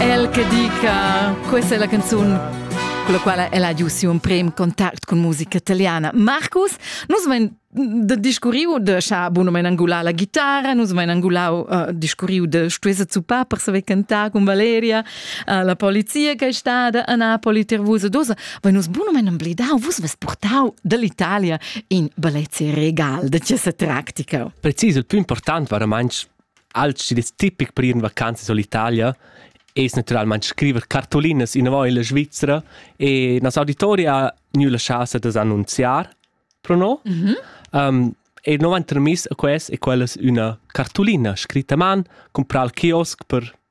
El che dica, questa è la canzone con la quale ella ha giuto un primo contatto con musica italiana. Marcus, nus men de discurriu de scha buno men angular la guitarra nus men angulau uh, discurriu de stuesa zuppar per saver cantar con Valeria uh, la polizia che è stata a Napoli ter vus dosa voi nus buno men amblidau vus ves portau dall'Italia in bellezze regal de questa tactica precis il più importante veramente Alch chi'd es tipic per ir in vacanza sull'Italia es natüralmaing scriver cartulinas inavò illa Svizra e nos auditori ha gnü la chasa da's annunziar pro no. Um, e no vain termiss a quest e quellas üna cartulina scritta a man, comprà al kiosk per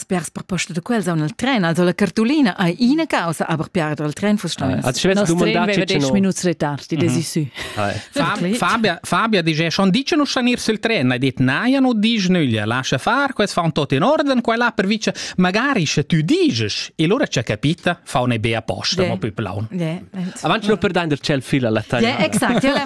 Spers per posta da quels aun al tren, also la cartolina hai ina causa, aber piarder al tren fuss stein. Als schwest dumandar 10 minutes retard, die des issu. Fabia, Fabia dice, schon dice nu stanir sul tren, hai dit naia nu dice nüglia, lascia far, quels fan tot in orden, quella per vice, magari sche tu dices, e lura c'è capita. faun ei be aposta, mo più plaun. Avanti lo per dainder cel fila la taglia. Exact, ja la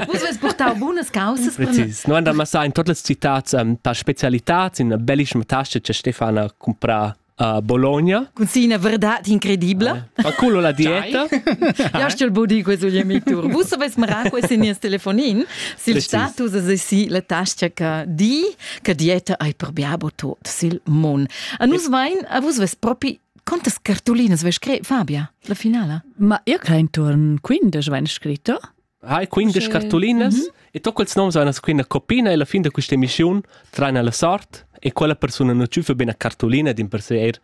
Vus veis portau bunas causas. Precis. No andar massa in totes citats um, per specialitats in bellischma tasche che Stefana compra a Bologna. Con sì una verdad incredibile. Eh. Ma culo la dieta. Io sto il body questo gli miei tour. Vous savez marà questo nies telefonin sil status e sì la tasca che di che dieta ei per biabo tot sil mon. A nus vein, a vus ves propi Quantas cartulinas vei scret Fabia, la finala? Ma io crein turn 15 vein scritto. Hai 15 cartulinas mm -hmm. e to quels noms vein quina copina e la fin da questa emissiun traina la sort e quella persona non ciufa bene cartulina din per se er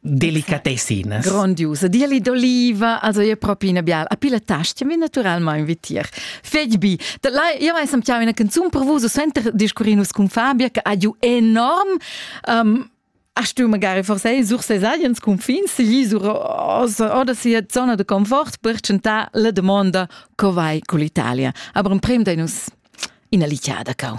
delicatessinas. Grondiusa, dieli d'oliva, also è proprio una biala. A pila tasti mi naturalmente vitir. Fegbi, io mai sam ciao una canzone per vos, senter discurinus con Fabia che ha giù enorm um, Ach du magari forse sur ses agens confins gli sur oder sia zona de confort per chantar la domanda co vai con l'Italia. Aber un prem da nus ina lichada cau.